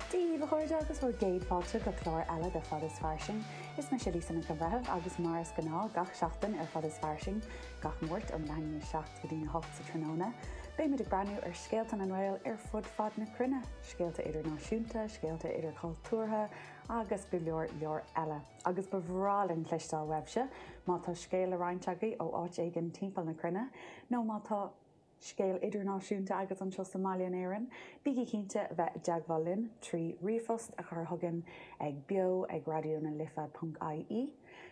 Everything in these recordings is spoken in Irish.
Daoibh, a chairde, agus bhur gcéad fáilte go clár eile de Fad is Fairsing. Is mise Lisa Nic an Bhreithimh agus mar is gnáth gach seachtain ar Fad is Fairsing gach Máirt um leath i ndiaidh 7 go dtí na hocht sa tráthnóna, beidh muid ag breathnú ar scéalta na nGael ar fud fad na cruinne, scéalta idirnáisiúnta, scéalta idirchultúrtha agus go leor leor eile. Agus ba bhreá linn cloisteáil uaibhse, má tá scéal le roinnt agaibh ó áit éigin timpeall na cruinne nó má tá Scéal idirnáisiúnta agat anseo sa mbaile in Éirinn? Bígí cinnte a bheith i dteagmháil linn trí ríomhphost a chur chugainn ag beo ag Raidió na Life ponc IE,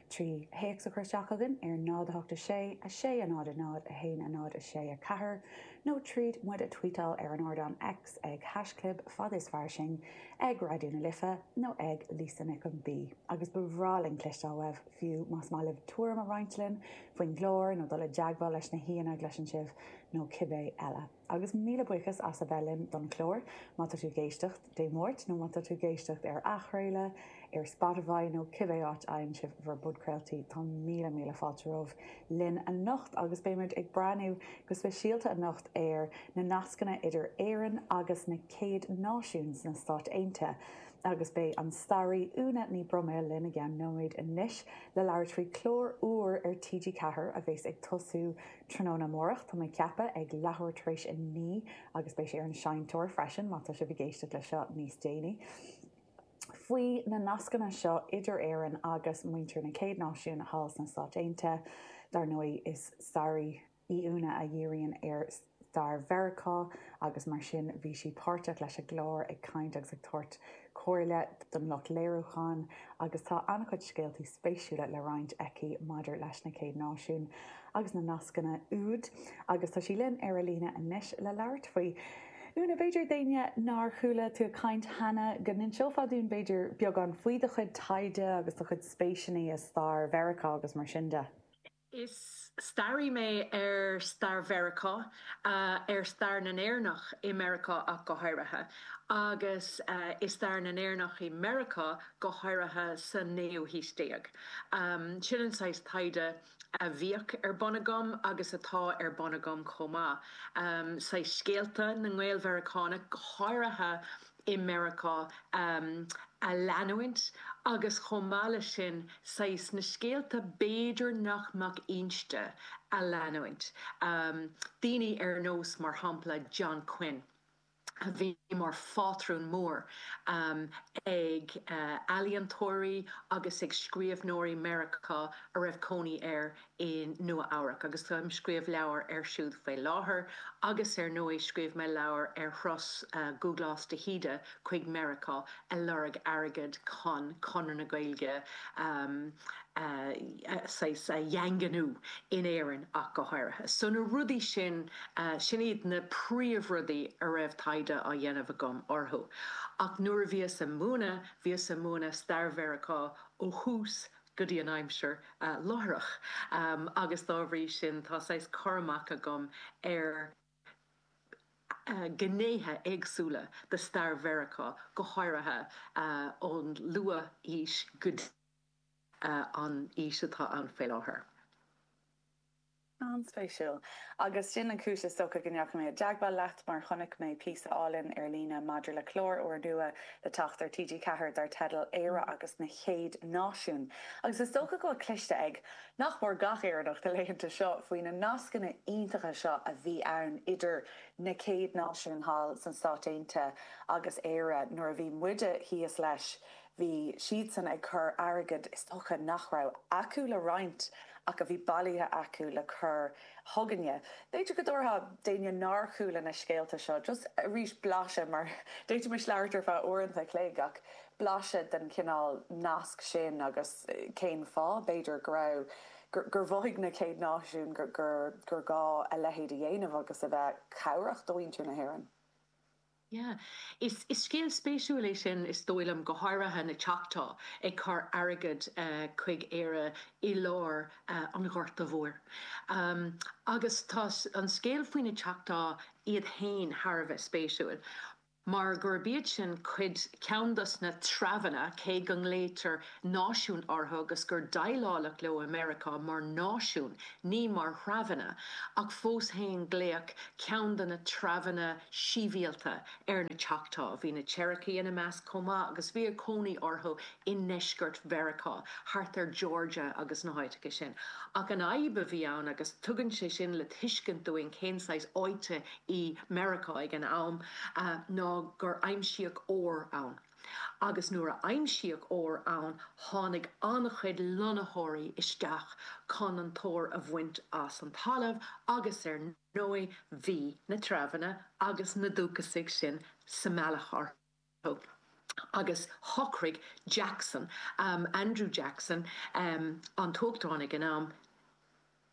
trí théacs a chur isteach chugainn ar 0 8 6 6 0 0 1 0 6 4 nó tríd muid a tweetáil ar an ardán X ag hashchlib Fad is fairsing ag Raidió na Life nó ag Lisa Nic an B. Agus ba bhreá linn cloisteáil uaibh, fiú más maith libh tuairim a roinnt linn faoin gclár nó dul i dteagmháil leis na haíonna a gcloiseann sibh nó cibé eile. Agus míle buíochas as a bheith linn don chlár, má tá tú ag éisteacht Dé Máirt nó má tá tú ag éisteacht ar athchraoladh ar Spotify nó cibé áit a fhaigheann sibh bhur bpodchraoltaí, tá míle míle fáilte romhaibh linn anocht agus beidh muid ag breathnú go speisialta anocht ar na nascanna idir Éirinn agus na Chéad Náisiúin sna Stáit Aontaithe. Agus beidh an staraí Úna Ní Broiméil linn i gceann nóiméid anois le labhairt faoi chlár úr ar TG Ceathair a bheas ag tosú tráthnóna amárach, tá mé ag ceapadh, ag leathuair tar éis a naoi agus beidh sé ar an Seinnteoir freisin, má tá sibh ag éisteacht le seo níos déanaí. faoi na nascanna seo idir Éirinn agus muintir na Chéad Náisiún thall sna Stáit Aontaithe. Dar ndóigh, is staraí. í Úna a dhíríonn ar stair Mheiriceá agus mar sin bhí sí páirteach leis an gclár, ag caint agus ag tabhairt comhairle don lucht léiriúcháin agus tá an-chuid scéaltaí spéisiúla le roinnt aici maidir leis na Chéad Náisiúin agus na nascanna úd agus tá sí linn ar an líne anois le labhairt faoi. Úna, b'fhéidir d'éinne nár chuala tú ag caint cheana go n-inseofá dúinn b'fhéidir beagán faoi do chuid taighde agus do chuid spéiseanna i stair Mheiriceá agus mar sin de. Is staraí mé ar stair Mheiriceá, ar stair na nÉireannach i Meiriceá ach go háirithe, agus i stair na nÉireannach i Meiriceá go háirithe sa naoú haois déag. Sin an saghas taighde a bhíodh ar bun agam agus atá ar bun agam chomh maith, saghas scéalta na nGael-Mheiriceánach, go háirithe i Meiriceá a leanúint agus chomh maith leis sin saghas na scéalta b'fhéidir nach mbeadh inste a leanúint, daoine ar nós mar shampla John Quinn a bhí mar phátrún mór ag ealaíontóirí agus ag scríobhnóirí Meiriceá a raibh cónaí air i Nua Eabhrac agus táim ag scríobh leabhar ar siúd faoi láthair agus ar ndóigh scríobh mé leabhar ar thuras Dhúglás de hÍde chuig Meiriceá ag lorg airgead chun Conradh na Gaeilge saghas a dhaingniú in Éirinn ach go háirithe. So na rudaí sin, sin iad na príomhrudaí a raibh taighde á dhéanamh agam orthu. Ach nuair a bhíos ag múineadh, bhíos ag múineadh stair Mheiriceá ó thús go dtí an aimsir láithreach agus dá bhrí sin tá saghas cur amach agam ar ghnéithe éagsúla de stair Mheiriceá, go háirithe ón luath-aois go dtí an aois atá ann faoi láthair. An-spéisiúil. Agus sin an chúis, is dócha, go ndeachaigh mé i dteagmháil leat, mar chonaic mé píosa álainn ar líne maidir le clár úrnua le teacht ar TG Ceathair dar teideal 'Éire agus na Chéad Náisiúin'. Agus is dócha go bhfuil cloiste ag, nach mór, gach Éireannach na laethanta seo faoi na nascanna iontacha seo a bhí ann idir na Chéad Náisiúin thall sna Stáit Aontaithe agus Éire nuair a bhí muide thíos leis Bhí siadsan ag cur airgead is dócha nach raibh acu le roinnt ach a bhí bailithe acu le cur chugainne. B'fhéidir go dtabharfá d'éinne nár chuala na scéalta seo just arís blaiseadh, mar d'fhéadfaimis labhairt ar feadh uaireanta a chloig, ach blaiseadh den chineál nasc sin agus cén fáth, b'fhéidir, go raibh, gur mhothaigh na Chéad Náisiúin gur gá a leithéid a dhéanamh agus a bheith cabhrach do mhuintir na hÉireann. Yeah. Is scéal spéisiúil é sin, is dóigh liom, go háirithe na Choctaw ag cur airgead chuig Éire i lár an Ghorta Mhóir. Agus tá an scéal faoi na Choctaw iad féin thar a bheith spéisiúil, mar gurb iad sin cuid, ceann dos na treibheanna, cé go nglaoitear náisiún orthu agus gur déileáladh leo i Meiriceá mar náisiún, ní mar threibheanna, ach fós féin glaodh ceann de na treibheanna sibhialta ar na Choctaw. Bhí na Cherokee ina measc chomh maith agus bhíodh cónaí orthu i ndeisceart Mheiriceá, thart ar Georgia agus na háiteacha sin. Ach an fhadhb a bhí ann, agus tugann sé sin le tuiscint dúinn cén saghas áite í Meiriceá ag an am, ná gur aimsíodh ór ann. agus nuair a aimsíodh ór ann tháinig an-chuid lonnaitheoirí isteach chun an t-ór a bhaint as an talamh agus ar ndóigh bhí na treibheanna agus na dúchasaigh sin sa mbealach orthu agus shocraigh Jackson, Andrew Jackson, an tUachtarán ag an am,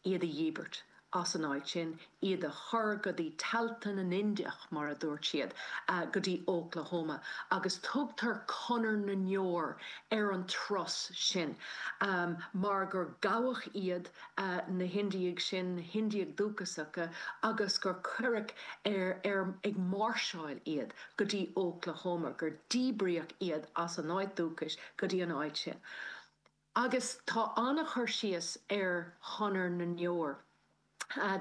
iad a dhíbirt as an áit sin, iad a chur go dtí tailte na nIndiach, mar a dúirt siad, go dtí Óclahóma, agus tugtar Conair na nDeor ar an turas sin mar gur gabhadh iad, na hIndiaigh sin, na hIndiaigh Dhúchasacha, agus gur cuireadh ar ag máirseáil iad go dtí Óclahóma, gur díbríodh iad as a n-áit dúchais go dtí an áit sin. Agus tá an-chur síos ar Chonair na nDeor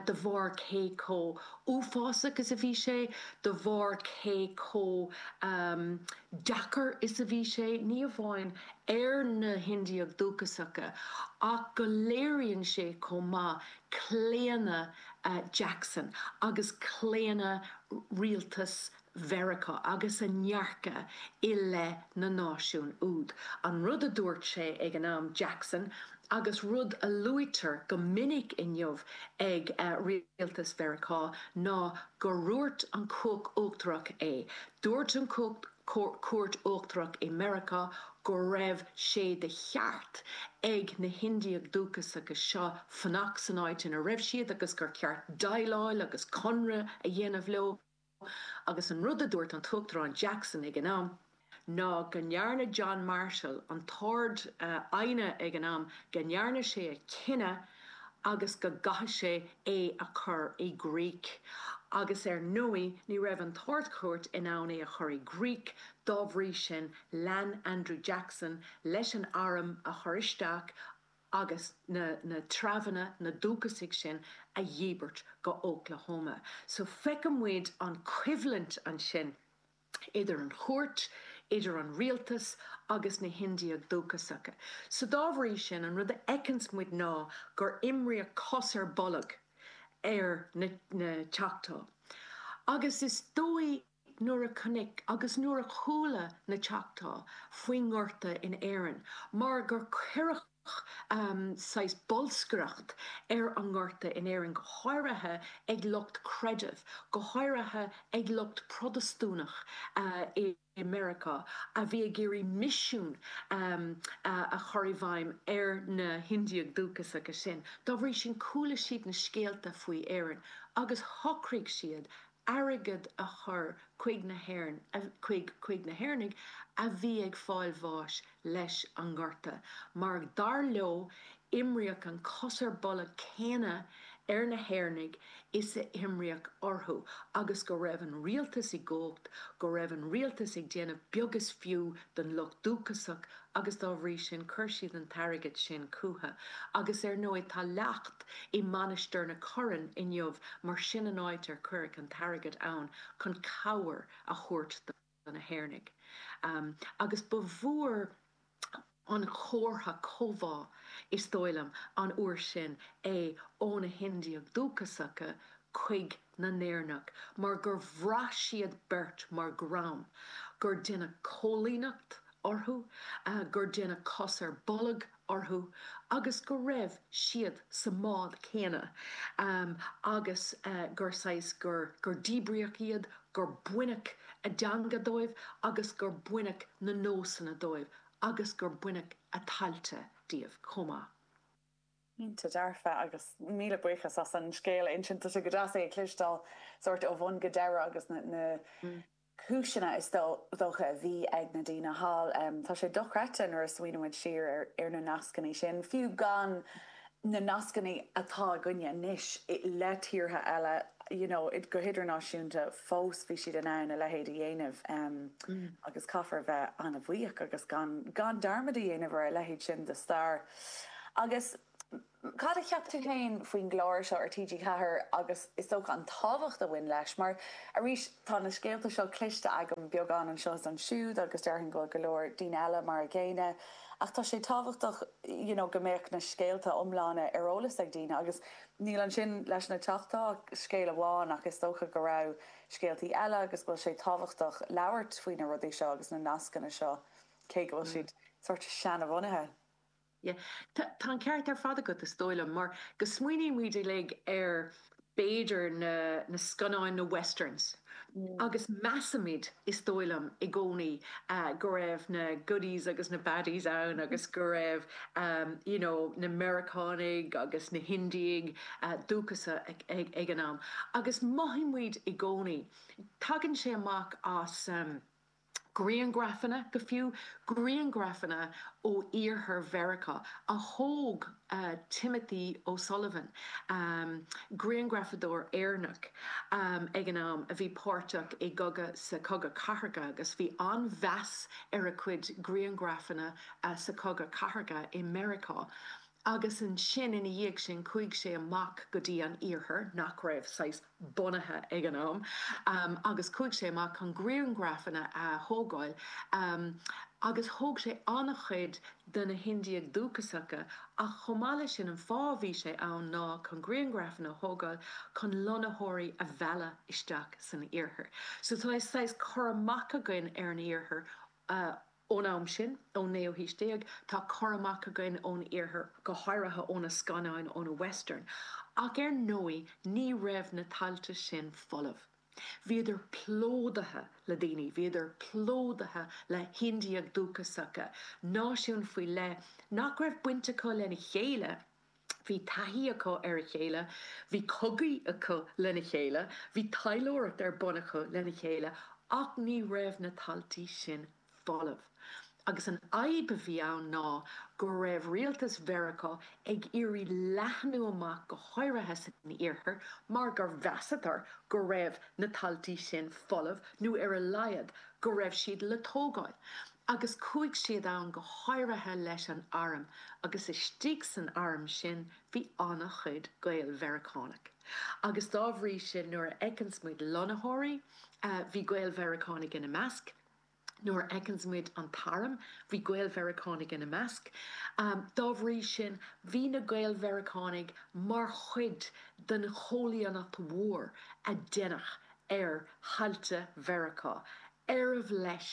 de bharr cé chomh uafásach is a bhí sé, de bharr cé chomh deacair is a bhí sé, ní amháin ar na hIndiaigh Dhúchasacha, ach go léiríonn sé chomh maith claonadh Jackson agus claonadh rialtas Mheiriceá agus a ndearcadh i leith na náisiún úd. An rud a dúirt sé ag an am, Jackson, agus rud a luaitear go minic inniu ag rialtas Mheiriceá ná gur dhúirt an Chúirt Uachtarach é. Dúirt an Chúirt Uachtarach i Meiriceá go raibh sé de cheart ag na hIndiaigh Dhúchasacha seo fanacht san áit ina raibh siad agus gur cheart déileáil agus conradh a dhéanamh leo. agus an rud a dúirt an tUachtarán Jackson ag an am ná go ndearna John Marshall, an tArd-Aighne ag an am, go ndearna sé a chinneadh agus go gcaithfidh sé é a chur i gcrích. Agus ar ndóigh ní raibh an tArd-Chúirt in ann é a chur i gcrích, dá bhrí sin lean Andrew Jackson leis an arm a chur isteach, agus na na treabhanna, na dúchasaigh sin, a dhíbirt go hÓclahóma. So feiceann muid an choimhlint ansin idir an chúirt, idir an rialtas agus na hIndiaigh dhúchasacha. So dá bhrí sin, an rud a fheiceanns muid ná gur imríodh cos ar bolg ar na na Choctaw. Agus is dóigh. nuair a chonaic agus nuair a chuala na Choctaw faoin ngorta in Éirinn mar gur cuireadh saghas bolscaireacht ar an ngorta in Éirinn, go háirithe ag lucht creidimh, go háirithe ag lucht Protastúnach i Meiriceá a bhí ag iarraidh misiún a chur i bhfeidhm ar na hIndiaigh Dhúchasacha sin. Dá bhrí sin chuala siad na scéalta faoi Éirinn agus shocraigh siad a. airgead a chur chuig na hÉireann, chuig na hÉireannaigh a bhí ag fáil bháis leis an ngorta, mar dar leo, imríodh an cos ar bolg céanna ar na hÉireannaigh is a imríodh orthu, agus go raibh an rialtas i gcumhacht, go raibh an rialtas ag déanamh beag is fiú don lucht dúchasach, agus dá bhrí sin chuir siad an t-airgead sin chúthu agus ar ndóigh tá leacht i Mainistir na Corann inniu mar sin an áit ar cuireadh an t-airgead ann chun cabhair a thabhairt do na hÉireannaigh agus ba mhór an comhartha comhbhá is dóigh liom an uair sin é ó na hIndiaigh Dhúchasacha chuig na hÉireannaigh mar gur bhraith siad beirt mar dhream gur deineadh coilíneacht orthu, gur deineadh cos ar bolg orthu agus go raibh siad sa mbád céanna agus gur saghas, gur, gur díbríodh iad, gur baineadh a dteanga dóibh agus gur baineadh na nósanna dóibh agus gur baineadh a dtailte díobh chomh maith. Cinnte dearfa, agus míle buíochas as an scéal a insint. Tá sé go deas é a chloisteáil sórt ó bhun go deireadh agus na cúiseanna is dócha a bhí ag na daoine thall. Tá sé dochreidte nuair a smaoinímid siar ar na nascanna sin, fiú gan na nascanna atá againne anois le tíortha eile, you know, go hidirnáisiúnta, fós bhí siad in ann a leithéid a dhéanamh agus caithfear a bheith an-bhuíoch agus gan dearmad a dhéanamh ar a leithéid sin de stair. Agus cad a cheap tú féin faoin gclár seo ar TG4 agus is dócha an tábhacht a bhain leis? Mar arís, tá na scéalta seo cloiste agam beagán anseo is ansiúd agus déarfainn go bhfuil go leor daoine eile mar an gcéanna ach tá sé tábhachtach you know go mbeadh na scéalta iomlána ar eolas ag daoine agus níl ansin leis na Choctaw ach scéal amháin ach is dócha go raibh scéaltaí eile agus go bhfuil sé tábhachtach labhairt faoi na rudaí seo agus na nascanna seo. cé go bhfuil siad sórt seanabhunaithe. Yeah. Tá an ceart ar fad agat, is dóigh liom, mar go smaoinímid uilig ar, b'fhéidir, na scannáin, na westerns, agus measaimid, is dóigh liom, i gcónaí, go raibh na goodies agus na baddies ann agus go raibh, you know, na Meiriceánaigh agus na hIndiaigh Dhúchasacha ag an am. Agus mothaímid i gcónaí, tagann sé amach as, Grianghrafanna, go fiú grianghrafanna ó iarthar Mheiriceá, a thóg Timothy O'Sullivan, grianghrafadóir Éireannach, ag an am, a bhí páirteach i gcogadh sa Chogadh Cathartha agus bhí an-mheas ar a chuid grianghrafanna sa Chogadh Cathartha i Meiriceá. Agus ansin ina dhiaidh sin chuaigh sé amach go dtí an iarthar, nach raibh saghas bunaithe ag an am, agus chuaigh sé amach chun grianghrafanna a thógáil agus thóg sé an-chuid de na hIndiaigh Dhúchasacha ach chomh maith leis sin an fáth a bhí sé ann ná chun grianghrafanna a thógáil chun lonnaitheoirí a mhealladh isteach san iarthar. So tá saghas cur amach againn ar an iarthar Ón am sin, ón naoú haois déag, tá cur amach againn ón iarthar, go háirithe ó na scannáin ó na Westerns, ach ar ndóigh ní raibh na tailte sin folamh. Bhíodar plódaithe le daoine, bhíodar plódaithe le hIndiaigh dhúchasacha, náisiúin faoi leith nach raibh baint acu lena chéile, Bhí taithí acu ar a chéile, bhí cogaí acu lena chéile, bhí taidhleoireacht ar bun acu lena chéile ach ní raibh na taltaí sin folamh. Agus an fhadhb a bhí ann ná go raibh rialtas Mheiriceá ag iarraidh leathnú amach go háirithe san iarthar mar gur mheasadar go raibh na taltaí sin folamh nó ar a laghad go raibh siad le tógáil. Agus chuaigh siad ann go háirithe leis an arm agus istigh san arm sin bhí an-chuid Gael-Mheiriceánaigh. Agus dá bhrí sin nuair a fheiceanns muid lonnaitheoirí, bhí Gael-Mheiriceánaigh ina measc, nuair a fheiceanns muid an t-arm, bhí Gael-Mheiriceánaigh ina measc. Dá bhrí sin bhí na Gael-Mheiriceánaigh mar chuid den chóilíneacht mhór a deineadh ar thailte Mheiriceá, arbh leis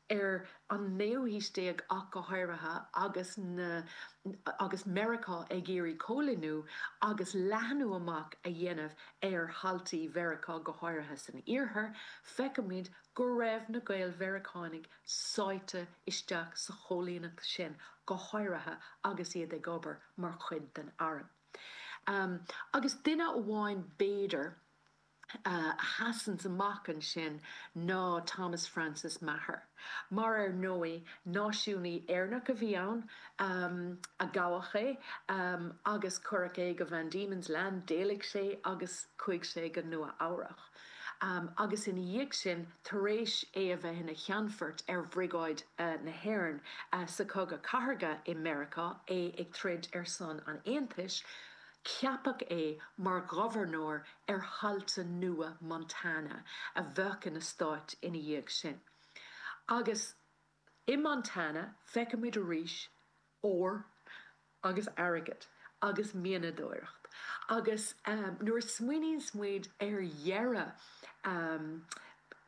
ar an naoú haois déag ach go háirithe agus na agus Meiriceá ag iarraidh cóilíniú agus leathnú amach a dhéanamh ar thaltaí Mheiriceá, go háirithe san Iarthar, feicimid go raibh na Gael-Mheiriceánaigh sáite isteach sa chóilíneacht sin, go háirithe agus iad ag obair mar chuid den arm. Agus duine amháin b'fhéidir. a sheasanns amach ansin ná Thomas Francis Meagher, mar ar ndóigh náisiúnaí Éireannach a bhí ann, a gabhadh é agus cuireadh é go Van Diemen's Land, d'éalaigh sé agus chuaigh sé go Nua Eabhrach agus ina dhiaidh sin, tar éis é a bheith ina cheannfort ar Bhriogáid na hÉireann sa Chogadh Cathardha i Meiriceá, é ag troid ar son an Aontais, Ceapadh é mar ghobharnóir ar thailte nua Montana a bheadh ina stát ina dhiaidh sin. Agus i Montana feicimid arís ór agus airgead agus mianadóireacht. Agus nuair a smaoiníonns muid ar dheireadh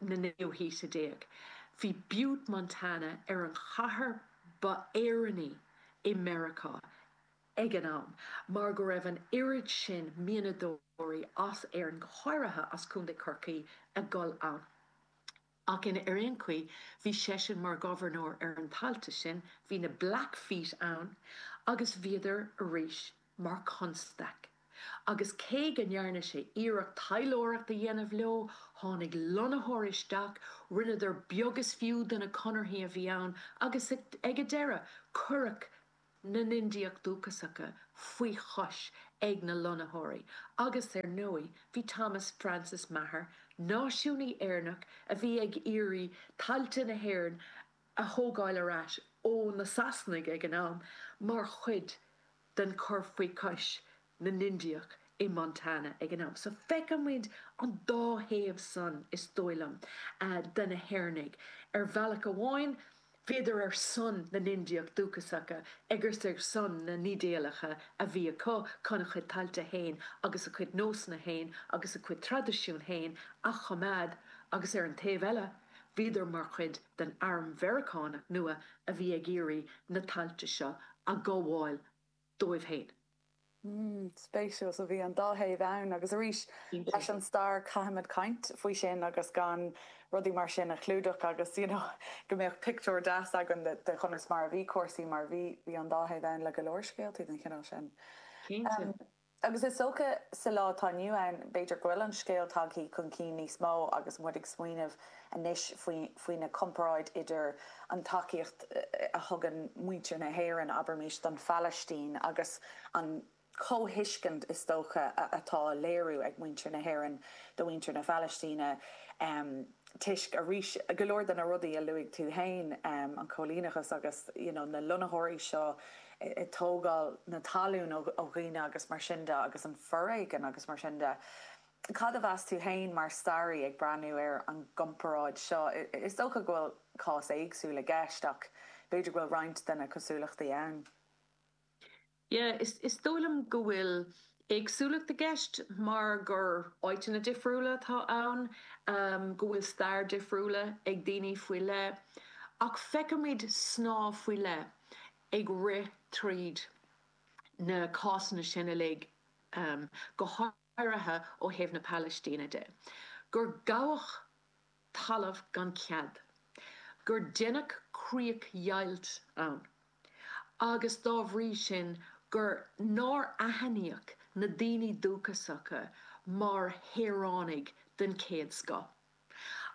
na naoú haoise déag, bhí Butte, Montana ar an chathair ba Éireannaí i Meiriceá ag an am, mar go raibh an oiread sin mianadóirí, as Éirinn go háirithe, as Contae Chorcaí ag dul ann. Ach in, ar aon chaoi, bhí seisean mar ghobharnóir ar na tailte sin, bhí na Blackfeet ann, agus bhíodar arís mar chonstaic. Agus cé go ndearna sé iarracht taidhleoireacht a dhéanamh leo, tháinig lonnaitheoirí isteach, rinneadar beag is fiú de na conarthaí a bhí ann, agus ag a deireadh, cuireadh, na nIndiach dúchasacha faoi chois ag na lonnaitheoirí agus, ar ndóigh, bhí Thomas Francis Meagher, náisiúnaí Éireannach a bhí ag iarraidh tailte na hÉireann a thógáil ar ais ó na Sasanaigh ag an am, mar chuid den chur faoi chois na nIndiach i Montana ag an am. So feicimid an dá thaobh san, is dóigh liom, de na hÉireannaigh. Ar bhealach amháin, bhíodar ar son na nIndiach dúchasacha agus ar son na n-ídéalacha a bhí acu chun a chuid tailte fhéin agus a chuid nósanna fhéin agus a chuid traidisiún fhéin a choimeád agus ar an taobh eile, bhíodar mar chuid den arm Mheiriceánach nua a bhí ag iarraidh na tailte seo a ghabháil dóibh féin. Mm, spéisiúil. So bhí an dá thaobh ann agus arís leis an stair caithimid caint faoi sin agus gan rudaí mar sin a chlúdach agus you know go mbeadh pictiúr deas againn de conas mar a bhí cúrsaí mar bhí bhí an dá thaobh ann le go leor scéaltaí den chineál sin. Cinnte. Em agus is dócha sa lá atá inniu ann b'fhéidir go bhfuil an scéal tagthaí chun cinn níos mó agus muid ag smaoineamh anois faoi na comparáid idir an tacaíocht a thugann muintir na hÉireann, abraimis, don Phalaistín agus an chomhthuiscint is dócha atá a léiriú ag muintir na hÉireann do mhuintir na Palaistíne toisc, arís, go leor de na rudaí a luaigh tú féin, an cóilíneachas agus you know na lonnaitheoirí seo ag tógáil na talún ó dhaoine agus mar sin de agus an foréigean agus mar sin de. Cad a mheas tú fhéin, mar staraí, ag breathnú ar an gcomparáid seo? Is dócha go bhfuil cás éagsúil i gceist, ach b'fhéidir go bhfuil roinnt de na cosúlachtaí ann. Yeah, is dóigh liom go bhfuil éagsúlacht i gceist mar gur áiteanna difriúla atá ann, go bhfuil stair difriúla ag daoine faoi leith, ach feicimid snáth faoi leith ag rith tríd na cásanna sin uilig, go áirithe ó thaobh na Palaistíne de, gur gabhadh talamh gan cead, gur deineadh críochdheighilt ann agus dá bhrí sin gur nár aithníodh na daoine dúchasacha mar shaoránaigh den chéad scoth.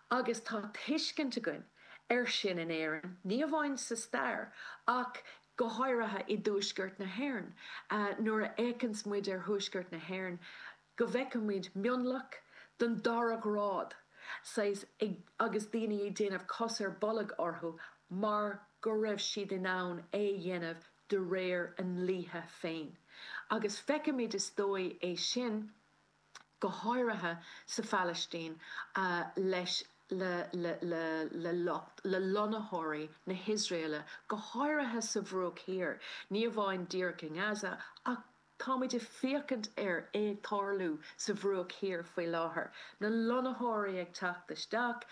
Agus tá tuiscint againn air sin in Éirinn, ní amháin sa stair ach go háirithe i dTuaisceart na hÉireann. Nuair a fhéachanns muid ar Thuaisceart na hÉireann go bhfeicimid mionlach den dara ghrád, saghas, ag, agus daoine ag déanamh cos ar bolg orthu mar go raibh siad in ann é a dhéanamh de réir a ndlíthe féin. Agus feicimid is dóigh é sin go háirithe sa Phalaistín, leis le lonnaitheoirí na hIosraeile, go háirithe sa Bhruach Thiar, ní amháin díreach i nGaza, ach táimid ag féachaint ar é ag tarlú sa Bhruach Thiar faoi láthair, na lonnaitheoirí ag teacht isteach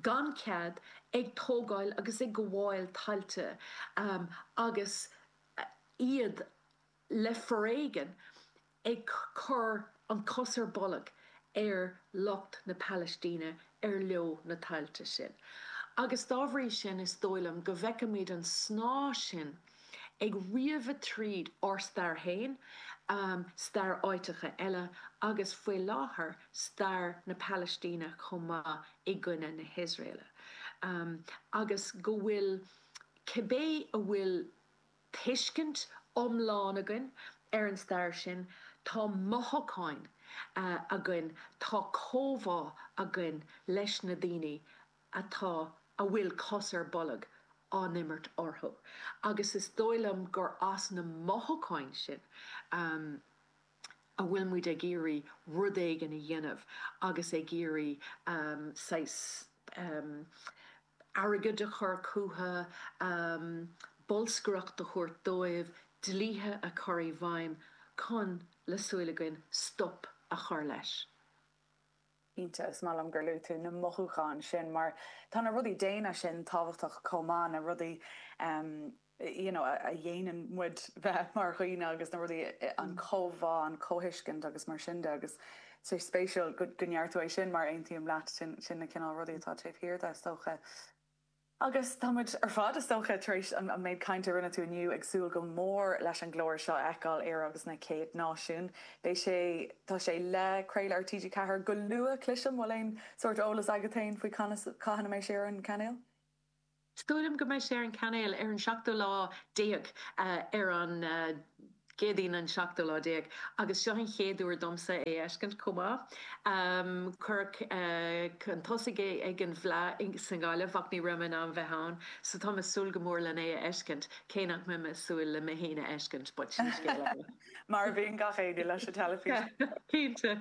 gan chead, ag tógáil agus ag gabháil tailte agus iad le foréigean ag cur an cos ar bolg ar lucht na Palaistíne ar leo na tailte sin. Agus dá bhrí sin, is dóigh liom go bhfeicimid an snáth sin ag sníomh tríd ár stair féin, stair áiteacha eile agus, faoi láthair, stair na Palaistíne chomh maith i gcoinne na hIosraeile. Agus go bhfuil, cibé a bhfuil tuiscint iomlán againn ar an stair sin, tá mothúcháin againn, tá comhbhá againn leis na daoine atá, a bhfuil cos ar bolg á imirt orthu. Agus is dóigh liom gur as na mothúcháin sin a bhfuil muid ag iarraidh rud éigin a dhéanamh agus ag iarraidh saghas airgead a chur chucu, bolscaireacht a thabhairt dóibh, dlíthe a chur i bhfeidhm chun, le súil againn, stop a chur leis. Cinnte, is maith liom gur luaigh tú na mothúcháin sin mar tá na rudaí daonna sin tábhachtach chomh maith, na rudaí. you know a dhéanann muid bheith mar dhaoine agus na rudaí an chomhbhá an chomhthuiscint agus mar sin de agus sé spéisiúil go go ndeir tú é sin mar aontaím leat sin sin na cineál rudaí atá taobh thiar de is dócha agus tá muid ar fad is dócha tar éis an méid cainte a rinne tú inniu ag súil go mór leis an gclár seo a fheiceáil Éire agus na céad náisiún beidh sé tá sé le craoladh ar TG4 go luath cliseam bhfuil aon sórt eolas agat féin faoi cathain a mbeidh sé ar an gcainéal Sílim go mbeidh sé ar an gcainéal ar an seachtú lá déag, ar an gCéadaoin an seachtú lá déag, agus seo an chéad uair domsa é a fheiscint chomh maith. Cuireadh chun tosaigh é ag an bhFleá sa nGaillimh ach ní raibh mé in ann bheith ann so táim ag súil go mór len é a fheiscint, cé nach mbeidh mé ag súil le mé fhéin a fheiscint, but sin scéal eile. Mar a bhíonn gach éinne leis an teilifís! Cinnte.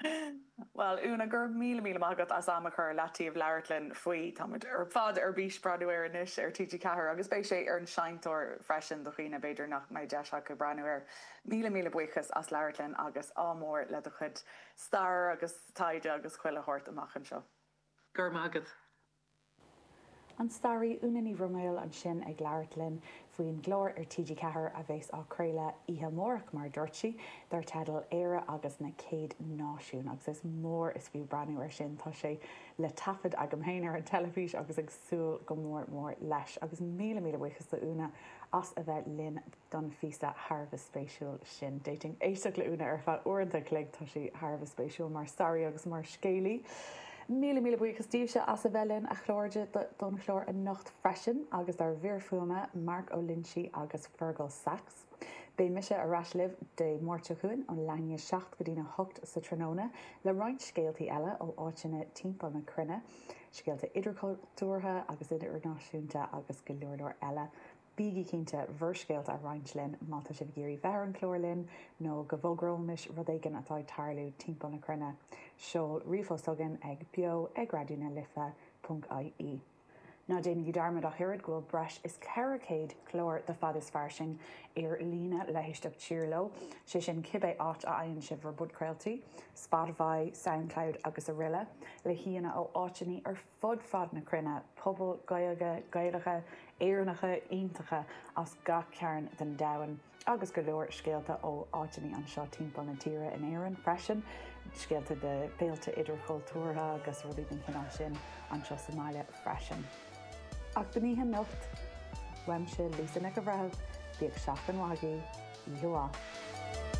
Bhuel, Úna, go raibh míle míle maith agat as an am a chur i leataobh le labhairt linn faoi. Táimid ar fad ar bís breathnú air anois ar TG4 agus beidh sé ar an seinnteoir freisin do dhaoine, b'fhéidir, nach mbeidh deis acu breathnú air. Míle míle buíochas as labhairt linn agus ádh mór le do chuid stair agus taighde agus chuile shórt amach anseo. Go raibh maith agat. An staraí Úna Ní Bhroiméil ansin ag labhairt linn faoin gclár ar TG4 a bheas á chraoladh oíche amárach, mar a dúirt sí, dar teideal 'Éire agus na Céad Náisiúin'. Agus is mór is fiú breathnú air sin, tá sé le taifead agam féin ar an teilifís agus ag súil go mór mór leis. Agus míle míle buíochas do Úna as a bheith linn. don phíosa thar a bheith spéisiúil sin. D'fhéadfainn éisteacht le Úna ar feadh uaireanta an chloig, tá sí thar a bheith spéisiúil mar staraí agus mar scéalaí. Míle míle buíochas daoibhse as a bheith linn, a chairde, don chlár anocht freisin agus dár bhfear fuaime, Mark Ó Loingsigh agus Fergal Sachs. Beidh mise ar ais libh Dé Máirt seo chugainn ón leath i ndiaidh 7 go dtí'n 8 sa tráthnóna le roinnt scéaltaí eile ó áiteanna timpeall na cruinne, scéalta idirchultúrtha agus idirnáisiúnta agus go leor leor eile. Bígí cinnte bhur scéalta a roinnt linn má tá sibh ag iarraidh bheith ar an chlár linn nó go bhfógróimis rud éigin atá ag tarlú timpeall na cruinne. Seol ríomhphost chugainn ag beo ag raidió na life ponc ie. Ná déanaigí dearmad ach oiread go bhfuil breis is 400 clár de Fad is Fairsing ar líne le héisteacht siar leo, sé sin cibé áit a fhaigheann sibh bhur bpodchraoltaí, Spotify, Soundcloud agus aroile, le haíonna ó áiteannaí ar fud fad na cruinne, pobail Ghaeilge, Gaelacha, Éireannacha iontacha as gach cearn den domhan agus go leor scéalta ó áiteanna anseo timpeall na tíre, in Éirinn freisin, scéalta de fhéilte idirchultúrtha agus rudaí den chineál sin anseo sa mbaile freisin. Ach don oíche anocht, uaimse, Lisa Nic an Bhreithimh, bíodh seachtain mhaith agaibh, oíche mhaith.